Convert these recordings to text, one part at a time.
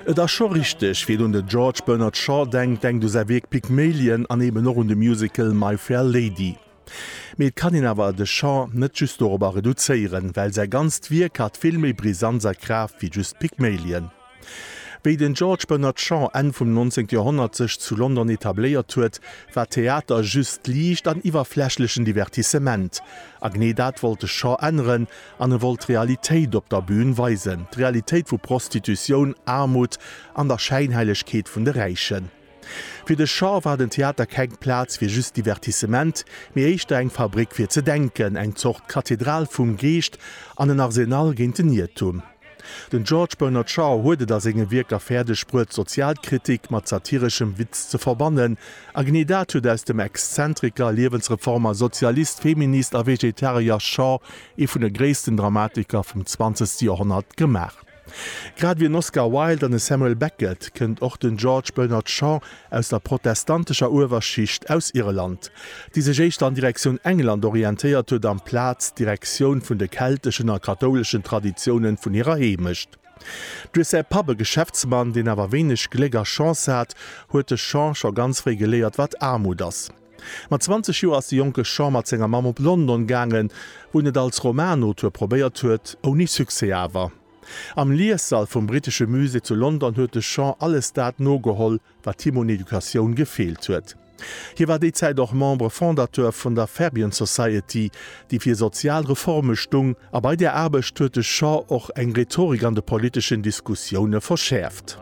Et ass scho richteg, Wien un de George Bernard Shaw denkt, denkt u säi Wierk Pygmalion an eben och un de Musical My Fair Lady. Mee et kann een awer de Shaw net just dorobber reduzéieren, well säi ganzt Wierk hat vill méi Brisanz a Kraaft wéi just Pygmalien. Wéi den George Bernard Shaw Enn vum 19. Joerhonnert sech zu London etabléiert huet, war Theater just liicht an iwwerflächlechen Divertissement. A genee dat wollt de Shaw änneren an e wollt d'Realitéit op der Bün weisen, d'Realitéit vu Prostitutioun, Aarmut an der Schäinheilegkeet vun de Räichen. Fir de Shaw war den Theater keng Plaz fir just Divertissement, mee éischter eng Fabréck fir ze denken, eng Zort Kathedral vum Geescht an en Arsenal géint den Iertum. Den George Bernard Shaw huet et a senge Wierker fäerdeg bruet, Sozialkritik mat satireschem Witz ze verbannen, a genee dat huet aus dem Exzentriker, Liewensreformer, Sozialist, Feminist a Vegetarier Shaw ee vun de gréissten Dramatiker vum zwanzegste Joerhonnert gemaach. Grad wéi en Oscar Wilde an e Samuel Beckett kënnt och den George Bernard Shaw aus der protestantescher Uewerschicht aus Irland, déi sech éischter an Direktioun England orientéiert huet amplaz Direktioun vun de kelteschen a kathouleschen Traditiounen vun hirer Heemecht. Duerch säi Papp, e Geschäftsmann, deen awer wéineg Gléck a Chance hat, huet de Shaw scho ganz fréi geléiert, wat Aarmut ass. Mat 20 Joer ass de jonke Sean mat senger Mamm op London gaangen, wou en et als Romanauteur probéiert huet, ouni Succès awer. Am Liessall vum brittesche Musée zu London huet de Sean alles dat nogeholl, wat him un Educatioun gefeelt huet. Hie war déi Zäit och Membre Fondateur vun der Fabian Society, déi fir sozial Reforme stung, a bei där Aarbecht huet de Sean och eng Rhetorik an de politeschen Diskussioune verschäerft.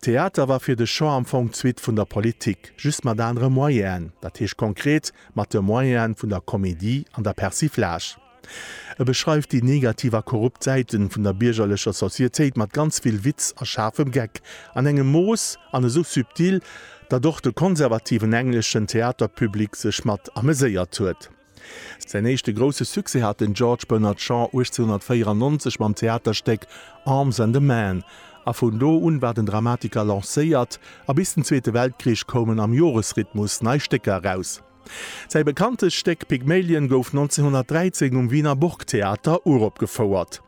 Theater war fir de Jean am Fong d'Suite vun der Politik, just mat anere Moyenen, dat heescht konkret mat de Moyene vun der Comédie an der Persiflage. E beschreift déi negativ a korrupt Säiten vun der biergerlecher Societéit mat ganz vill Witz a schaarfem Geck, an engem Mooss an esou subtil, datt och de konservativen engleschen Theaterpublic sech mat ameséiert huet. Säin éischte grousse Succès hat den George Bernard Shaw 1894 mam Theaterstéck Arms and a Man, a vun do un war den Dramatiker lancéiert, a bis den Zweete Weltkrich koumen am Joresrhythmus nei Stécker eraus. Säi bekanntest Stéck Pygmalion gouf 1913 um Wiener Burgtheater uropgefouert.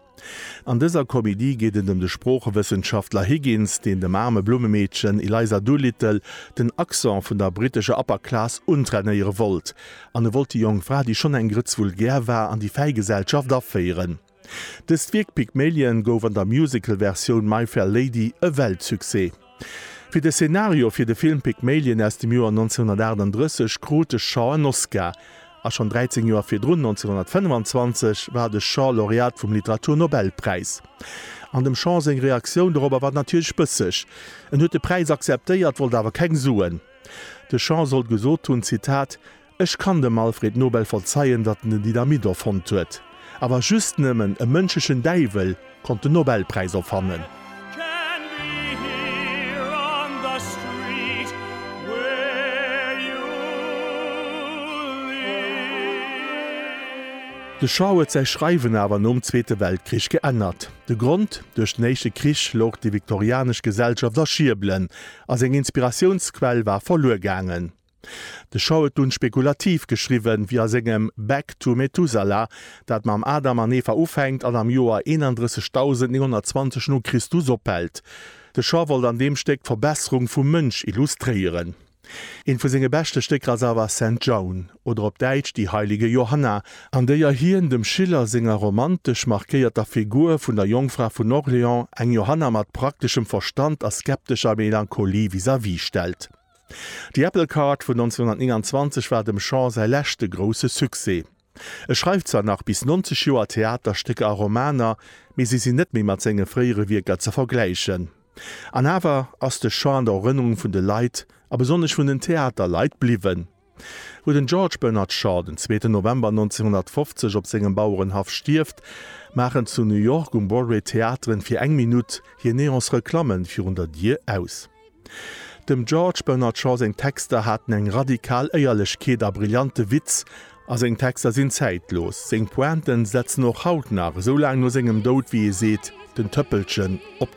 An dëser Komedie geet et ëm de Sproochewëssenschaftler Higgins, deen dem aarme Blummemeedchen Eliza Doolittle den Accent vun der brittescher Upper Class untrainéiere wollt. An e wollt déi jonk Fra, déi schonn eng Grëtz vulgär war, an déi fäi Gesellschaft aféieren. Dëst Wierk Pygmalion gouf an der Musical-Versioun My Fair Lady e Weltsuccès. Fir de Szenario fir de Film Pygmalien aus dem Joer 1938 krut de Shaw en Oscar, a schonn 13 Joer virdrun, 1925, war de Shaw Laureat vum Literaturnobelpräis. An dem Shaw seng Reaktioun dorobber war natierlech bësseg, en huet de Präis akzeptéiert, wollt awer keng Suen. De Shaw soll gesot hunn, Zitat, Ech kann dem Alfred Nobel verzeien, datt en den Dynamit erfonnt huet, awer just nëmmen e mënschlechen Däiwel konnt den Nobelpräis erfannen. De Shaw huet säi Schreiwen awer nom Zweete Weltkrich geännert. De Grond, Duerch den Éischte Krich louch déi viktorianesch Gesellschaft a Schiebelen, a seng Inspiratiounsquell war verluer gaangen. De Shaw huet dunn spekulativ geschriwwen, wéi a sengem Back to Methuselah, dat mam Adam an Eva ufänkt an am Joer 31920 no Christus ophält. De Shaw wollt an deem Stéck d'Verbesserung vum Mënsch illustréieren. Eent vu senge beschte Stécker ass awer Saint Joan, oder op Däitsch Die heilige Johanna, an déier hien dem Schiller senger romantesch markéierter Figur vun der Jongfra vun Orléans eng Johanna mat prakteschem Verstand a skeptescher Melancholie vis-à-vis stellt. Déi Apple Card vun 1929 war dem Shaw säi leschte grousse Succès. E schreift zwar nach bis 90 Joer Theaterstécker a Romaner, mee si sinn net méi mat senge fréiere Wierker ze vergläichen. An awer ass de Shaw an der Erënnerung vun de Leit, a besonnesch vun den Theaterleit, bliwwen. Wou den George Bernard Shaw den zweeten November 1950 op sengem Bauerenhaff stierft, maachen zu New York um Broadway d'Theateren fir eng Minutt hir Neons-Reklamme virun der Dier aus. Dem George Bernard Shaw seng Texter haten eng radikal Éierlechkeet a brillante Witz, a seng Texter sinn zäitlos. Seng Pointen setzen och haut nach, esou laang no sengem Doud, wéi ee seet, den Tëppelchen op